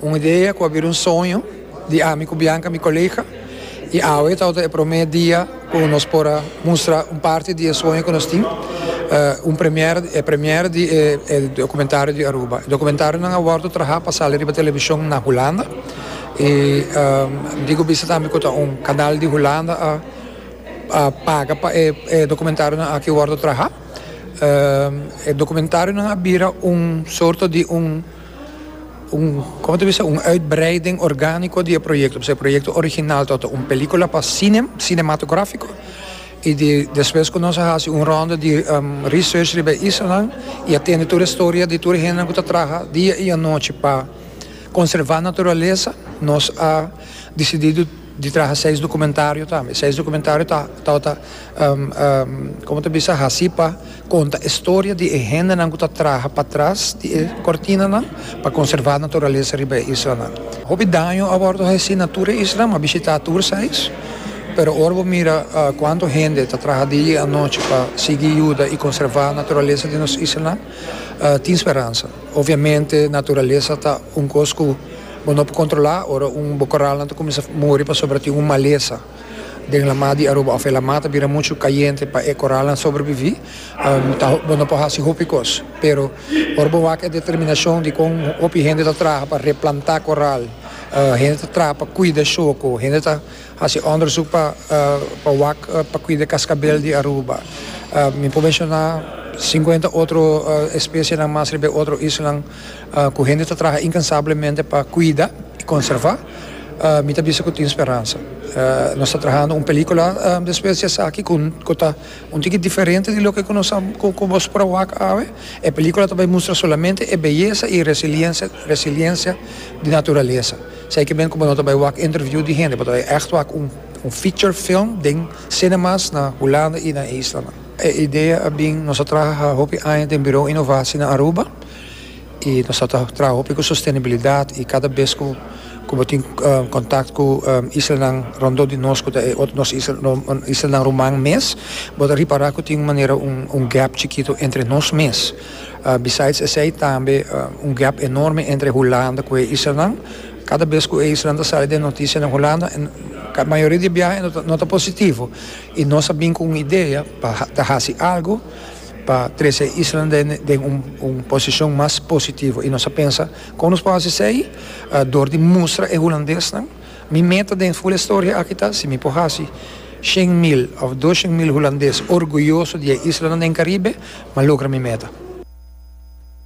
Un idea cu a bira un soño di ami cu Bianca mi colega y awe ta e prome dia cu nos por a mustra un parti di e soño cu nos tin, un premier, e premier di e documentario di Aruba. E documentarionan a wordo traha pa sali riba television na Hulanda y dico bisa tambe cu ta un canal di Hulanda a a paga pa e documentarionan aki wordo traha. E documentarionan a bira un sorto di un. Un, como ta bisa, un uitbreiding organico di e proyecto, pasobra e proyecto original ta ota un pelicula pa cinem, cinematografico, y di despues cu nos a haci un ronda di research riba e islanan y a tende tur e storia di tur e hendenan cu ta traha dia y anochi pa conserva naturalesa, nos a decidido. Di traha seis documentario tambe. Seis documentario ta tabata, como ta bisa, haci pa conta e storia di e hendenan cu ta traha patras di e cortinanan pa conserva naturalesa riba e islanan. Hopi daño a wordo haci na tur e isla. Mi a bishita tur seis, pero ora bo mira cuanto hende ta traha dia y anochi pa sigui yuda y conserva naturalesa di nos islanan, tin speransa. Obviamente naturalesa ta un cos cu. Bo no por controla ora un bo corralnan ta cuminsa muri pasobra tin un maleza den lama di Aruba of e lama ta bira mucho cayente pa e corralnan sobrevivi bo no por haci hopi cos pero ora bo wak e determinacion di con hopi hende ta traha pa replanta corral hende ta traha pa cuida shoco hende ta haci onderzoek pa pa wak pa cuida cascabel di Aruba mi por menciona cincuenta otro especie nan mas riba e otro isla. Ku hende ta traha inkansablemente pa kuida i konservá, mi ta bisa ku tin speransa. Nos ta trahando un pelíkula despues di esaki ku ta un tiki diferente di loke ku bo spera wak awe. E pelíkula ta bai mustra solamente e beyesa i resiliensia di naturalesa. Esei ke men ku bo no ta bai wak interviú di hende, bo ta bai ègt wak un feature film den cinemas na Hulanda i na e islanan. E idea a bin, nos a traha hopi aña den Birou Inovasi na Aruba i nos a traha hopi ku sostenibilidat i kada bes ku ku bo tin kontakt ku islanan rondó di nos ku ta e otro nos islanan ruman mes bo ta ripará ku tin un manera un gèp chikitu entre nos mes. Besides esei tambe un gèp enorme entre Hulanda ku e islanan. Kada bes ku e islanan ta sali den notisia den Hulanda mayoria di biaha no ta positivo. I nos a bin ku un idea pa ta hasi algu pa trese e isla den un posishon mas positivo. I nos a pensa, kon nos por hasi esei? Dor di mustra e hulandesnan. Mi meta den Full Historia aki ta, si mi por hasi shen mil òf doshen mil hulandes orguyoso di e islanan den Karibe, m'a logra mi meta.